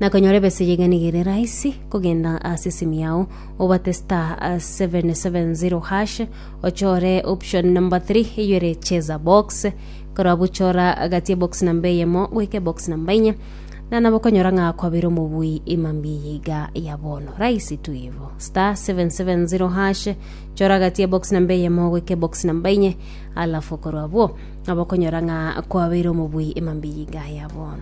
Na konyora ebesegi iga nigo ere rahisi kogenda ase esimu yao obate star 770 hash ochore option number 3 eyo ere cheza box korwa buchora gati ebox namba eyemo goika ebox namba inye na nabo konyora ng'a kwabere omobui emambi eye iga ya bono rahisi tu ivo star 770 hash chora gati ebox namba eyemo goika ebox namba inye alafu korwa abwo Abakonyora ng'a kwabeire omobui emambiyinga yabo.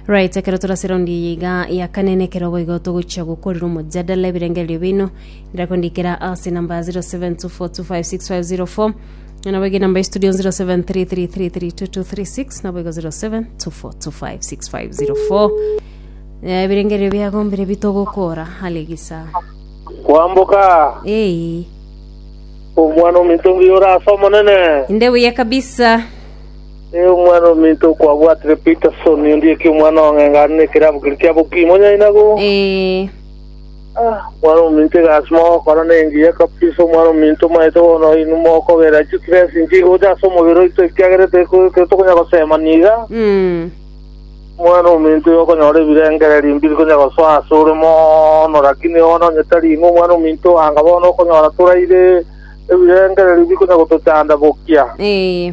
Right, ekero torase round eye iga ya kane na ekero boigo togochia gokorera omojadala ebirengererio bino ndira kondikera ase namba 0724256504 Nabo ege namba ya studio 0733332236 nabo ego 0724256504 Eh, ebirengererio biagombire bitogokora hale gisa kwamboka ei omwana ominto mbuya ore ase omonene inde buya kabisa e omwana ominto kwabwatire peterson ondieki omwana ong'engane ekerabu kiri kiabokimonyainago eh Omwana-ominto egasi mogokora nengiya kabisa, Omwana-ominto omanyete bono oino mokogerera chitrees inchige gocha ase omobere oito, ekiagera teri- titokonya gosema niga. Omwana-ominto igo okonyora ebirengererio mbiri konya gosoa ase ore mono, lakini bono onye tari ing'we Omwana-ominto, anga bono okonyora toraire ebirengererio bikonya gotochanda bokia. Ee.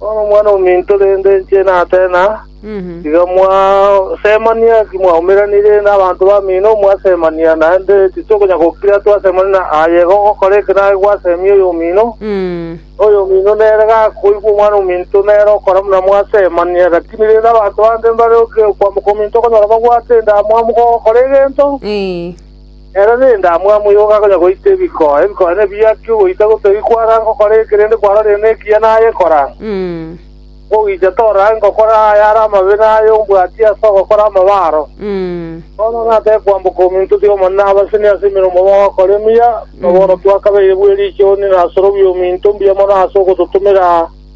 Bono Omwana-o-minto rende inche natena, tiga mwasemania ki mwaumeranire nabanto bamino mwasemania, naende titokonya gokira twasemania na aye ogokora eke naye gwasemia oyomino. Oyomino nere gakoigwa Omwana-o-minto nere okora buna mwasemania. Lakini rende abanto bande mbare okwama kw'ominto okonyora babwate endamwamu gogokora egento, Ere nendamwamu igoko akonya goita ebikoo, ebikoo nebiakie ogoita gotari kwara gokora eke rende kwarorire nekiya naye kora. Ogoicha torage gokora aya are amabe na aya ombwatie ase ogokora amabe aro. Bono natake kwamboka ominto otiga Omonene abasenie ase emeremo bagokora emiya, na bono twakabeire bw'eriicho onye nasorobi ominto mbuya mono ase ogototomera.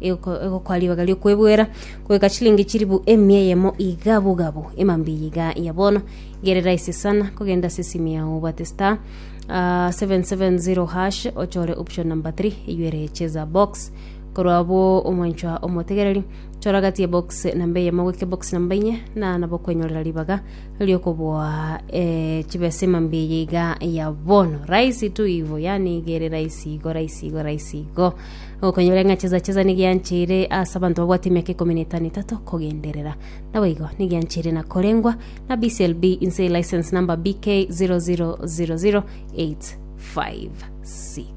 Ego- egokwa ribaga ri'okwebwera, goika chilingi chilifu emia eyemo iga bogabu, emambiya iga ya bono, gerera esesana, kogenda ase esimu yao obwate star ah, 770 hash, ochore option number 3 eywo ere cheza box. Korwa abwo omwanchwa omotegereri, chora gati ya box namba eyemo goika box namba inye, na nabo okwenyorera ribaga ri'okoboa eh, chibesa emambiya iga ya bono. Rahisi tu ivo, yaani gere rahisi igo, rahisi igo, rahisi igo. Okonyora ng'a chisachiza nigianchire ase abanto babwate emiaka ikomi na etano etato kogenderera. Naboigo nigianchire na korengwa na BCLB inse license number BK 0000856.